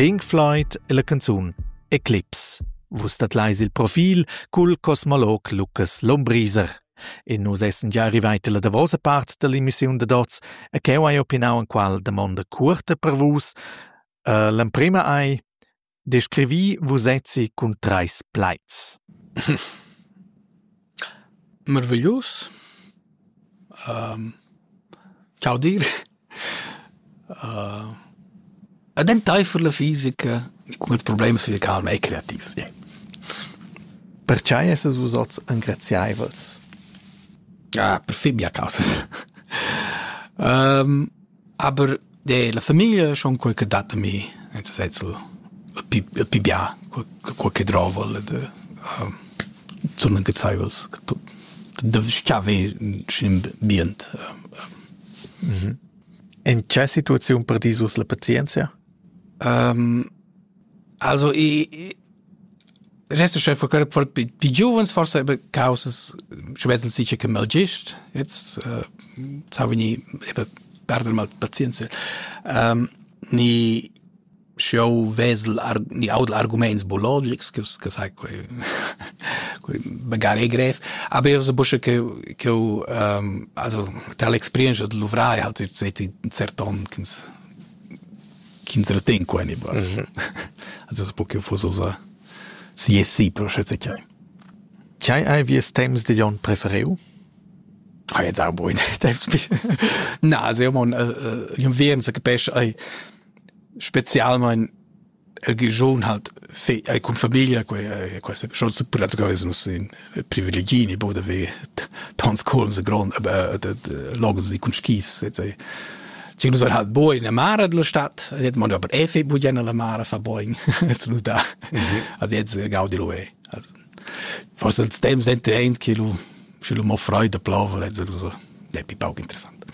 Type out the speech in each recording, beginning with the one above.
Pink Floyd è la canzun Eclipse. Vus dat leis il profil cul cosmolog Lucas Lombriser. E nus essen già arrivati la davosa part dell'emissiun da Dots e cheu hai opinau an qual damonda curta per vus. Uh, l'emprema ei Descrivi vusezzi cun trais plaids. Meraviglius. chaudir. ed enteifer la fisica cun ils problems fizical mei creativs. Yeah. Pertgei essas vus oz engraziaivels? Ah, per fin mia causa. um, Aber de la famiglia schon qualche dat a mi, nel senso pi pi bia qualche drovel de uh, sono gezaios de schiave in ambient. Mm In che situazione per disus la pazienzia? Um, also i Rest chef for pi giuvens forse aber causas schwetzen sicher che mal gist jetzt äh, sa ni eben perdere mal pazienza ähm, ni show vesel ar, ni audel arguments biologics che che sai quei quei magari grev aber io so busche che che ähm, also tra l'experienza de luvrai halt seit un certon ch'ins retegn qua en il bras. Mm -hmm. Also po che fosse osa siessi per schätze chai. Chai hai vies temps de Jon prefereu? Ah, ja, da boy. Na, also, man, jon veren se capesce, ei, spezialmein el Grischun hat fe ei cun famiglia quei questa schon su plazgares nus in privilegini bo da ve tants colms a grond aber de logos di cun skis et sei Ci nus hat bo in mare della stadt et man aber efe bu jena la mare fa boing su da ad jetzt gaudi lo e forse il stems dente eint che lu sche lu mo freide plova et so è più poco interessant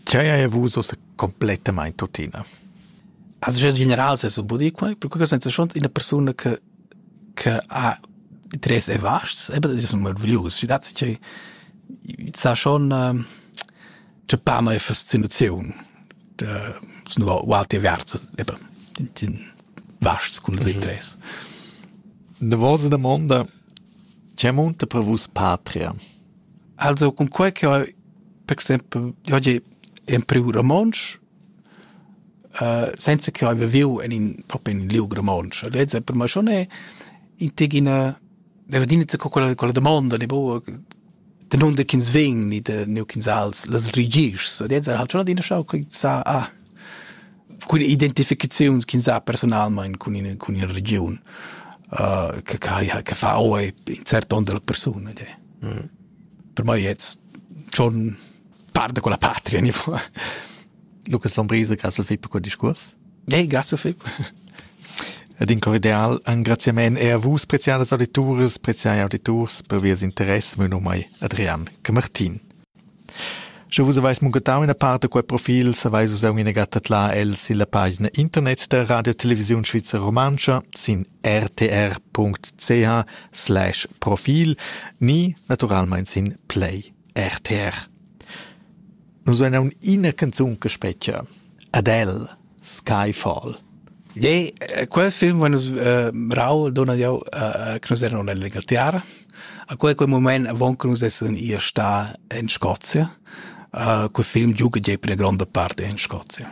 C'è hai avuto complètement tutina Has uschè general s'es budì qua, percura sainza schont üna persuna che che ha interess e vasts, eben es ün marvglius. Schi dat che sa schon tscheppa mai fascinaziun da snu ualti averts eben in vasts cun els interess. Davosa damonda, che munta per vus patria? Also, con quai che ho, per exempel, io oggi in priu romontsch, Senza ch'eu haiva viu in in propi in in liug romontsch. Lezza per me schon è in tigina, deva adina co quella quella damonda ne boa danunder ch'ins vegn ni da neu ch'ins als las regischs. Lezza ha schon adina schau quei sa ah cun identificaziuns ch'ins ha personalmein cun ina cun ina regiun che che che fa oi in cert onn dalla persuna. Per mei jetzt schon Par da quella patria nivo. Lucas Lombriser, grazie Philipp per quel discurs. Hey, grazie Philipp. Ed in cordial engraziament er a vus, preziadas auditoris, preziai auditors, per vies interesse, meu nom è Adrian Camartin. Sche vus avais muncatau ina part da quei profil, savais vus aunc ina gatta là el silla pagina internet der Radio Television Schweizer Romantscha sin rtr.ch/profil ni naturalmein sin Play. rtr. Nus vein aunc ina canzun che spetga. Adele, Skyfall. Jei, quel film va nus uh, rau dona jau uh, che nus eran nella tiara. A quel quel moment avon che nus essen ir sta in Scozia. Uh, quel film giuga jei per la gronda parte in Scozia.